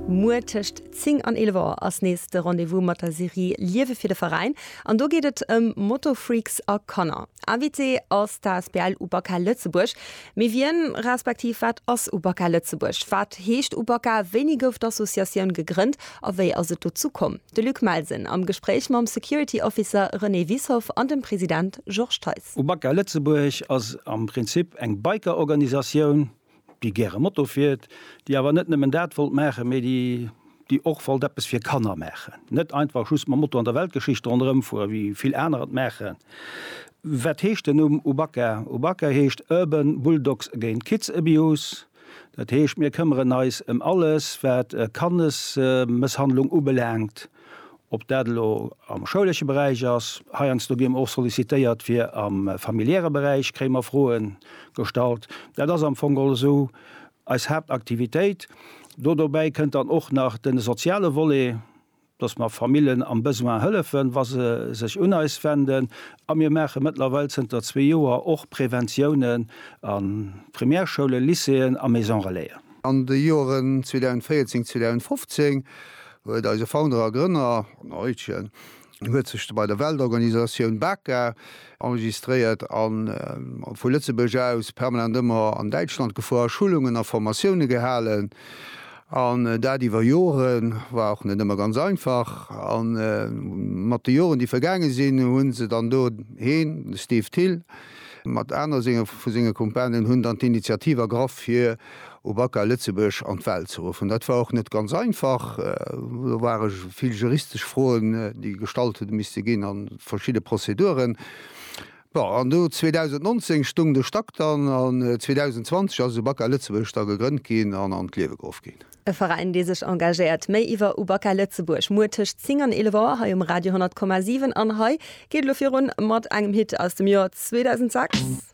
Muer tëscht 10 an 11 Auer ass nees de Rendez-vous mat der Serie Liewe fir de Veräin an do geet et ëm Moto-Freaks a Kanner. Invité ass d'asbl Ubaka Lëtzebuerg. Mee wien, respektiv wat ass Ubaka Lëtzebuerg? Wat heescht Ubaka? Wéini gouf d'Associatioun gegrënnt a wéi ass et dozou komm? De Luc Melsen am Gespréich mam Security Officer René Wiessoff an dem President Georges Theis. Ubaka Lëtzebuerg ass am Prinzip eng Biker-Organisatioun, déi gäre Moto fiert, déi awer net nëmmen dat wollt maachen, mee déi och wollt eppes fir Kanner maachen, net einfach just mam Moto an der Weltgeschicht ronderëm fueren, wéi vill aner et maachen. Wat heescht den Numm UBAKA? UBAKA heescht Urban Bulldogs Against Kids Abuse. Dat heescht, mir këmmeren eis ëm alles, wat Kannesmësshandlung ubelaangt. Ob dat elo am schoulesche Beräich ass, heiansdo gi mer och sollicitéiert fir am familiäre Beräich, kréie mer Froe gestallt. Dat ass am Fong geholl esou eis Haaptaktivitéit. Do dobäi kënnt dann och nach de soziale Volet, dass mer Famillen am Besoin hëllefen, wa se sech un eis wenden. A mir maache mëttlerweil zënter zwee Joer och Präventiounen a Primärschoulen, Lycéeën a Maison-relaisen. An de Joeren 2014, 2015 huet eise Founder a Grënner Arno Eutgen huet sech bei der Weltorganisatioun BAKA enregistréiert an vu Lëtzebuerg aus permanent ëmmer an Däitschland gefuer, Schulungen a Formatioune gehalen an dat iwwer Joren. War och net ëmmer ganz einfach a mat de Joren déi vergaange sinn hu se dann do, heen, de Steve Thill mat aner senge vu senge Kumpanen, hunn dann d'Initiativ ergraff fir, u Bakker Lëtzebuerg an d'Welt ze ruffen. Dat war och net ganz einfach. Do ware vill juristesch Froen, déi gestallt hu misste ginn a verschidde Prozeduren. Bon, an do 2019 stoung de Stack dann an 2020 ass u Bakker Lëtzebuerg da gegrënnt ginn an an d'Liewe geruff ginn. E Veräin, dee sech engagéiert. Méi iwwer u Bakker Lëtzebuerg muer tëscht 10 an 11 Auer hei um Radio 100,7. An hei geet elo virun mat engem Hit aus dem Joer 2006.